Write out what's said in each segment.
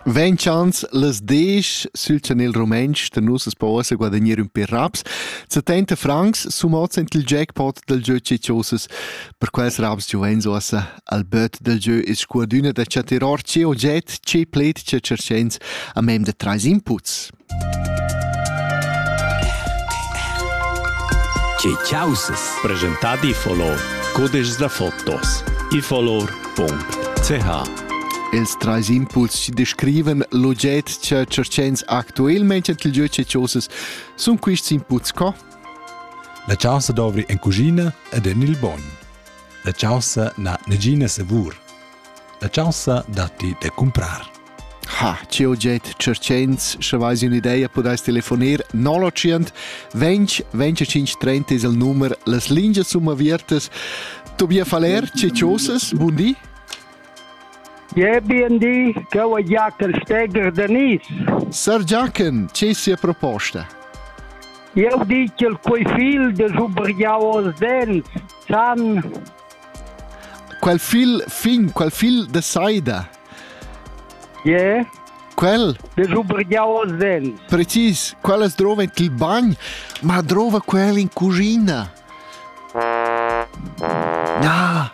Vegn chans las desch sül chanel rumentsch da nus as po uossa guadagner ün pêr raps. 70 francs sumozzan il jackpot dal giö Ceciosas. Per quels raps giovens uossa al böt dal giö es scuadüna da chattar or che oget, che pled, che tscherchens a mem da trais inputs. Che causes presentad i folor cudeschs da fotos ifolor.ch Els trais impuls chi descrivan l'oget cha tscherchens actuelmaing ent il jeu che chosas sun quists inputs co? La chaussa dovri en cuschina ed en il bogn. La chaussa n'ha negina savur. La chaussa datti da cumprar. Ha, ch'jeu jet cerchens, sche vais un'idea, pudais telefonir 0900 20 25 30 es il numero, las lingias sun avertas. Tobias Faller, ciociosas, bun di. Ja, bien di, cheu è Jacker Steger Denis. Sir Jacken, che sia proposta? Eu dic il quei fil de subriau os dents, san Quel fil fin, quel fil de Saida. Ie? Quel? De Zubrigliao Zen. Precis, quella drova il bagn, ma drova quel in cucina. Na,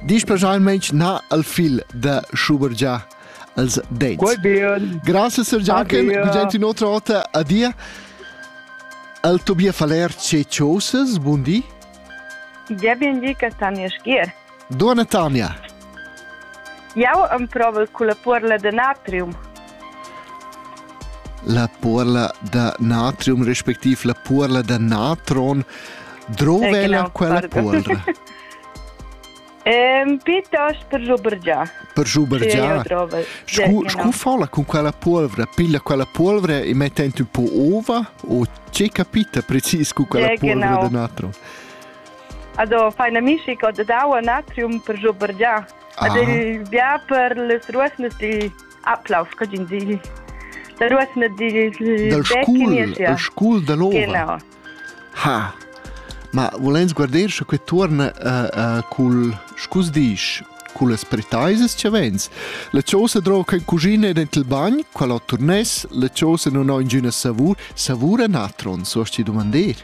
dici specialmente na al fil de Schubergia als dents. Quel bien. Grazie Sir Giachen, vi gente un'altra volta, adia. Al Tobias Faler, ce cioses, buondì. Tgei bien di, Castania Schier. Duonna Tania. Jau emprovel culla puorla da natrium. La puorla da natrium respectiv la puorla da natron drova ella quella puorla. Piuttost per schubergiar. Per schubergiar. Scu, scu fa la con quella polvra? Piglia quella polvra e metta un po ova o c'è capita precis con quella polvra genau. d'un altro? Also fai amici con d'aua natrium per schubergiar. Ah. Ad bia per les ruesnes di Ablauf, cogin di. Da ruesne di del scul, del scul dell'ova. Genau. Ha. Ma volens guarder sche que tuorna uh, uh, cul scus disch cun las pretaisas che vens. La chosa droca in cucina e dent il bagn, qual ho turnes, la chosa non ho ingüna savur, savura natron, so ti domandir?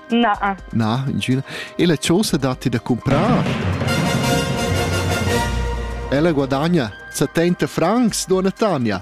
Na. Na, ingüna. E la chosa datti da comprar. Ella guadagna 70 francs, dona Tanja.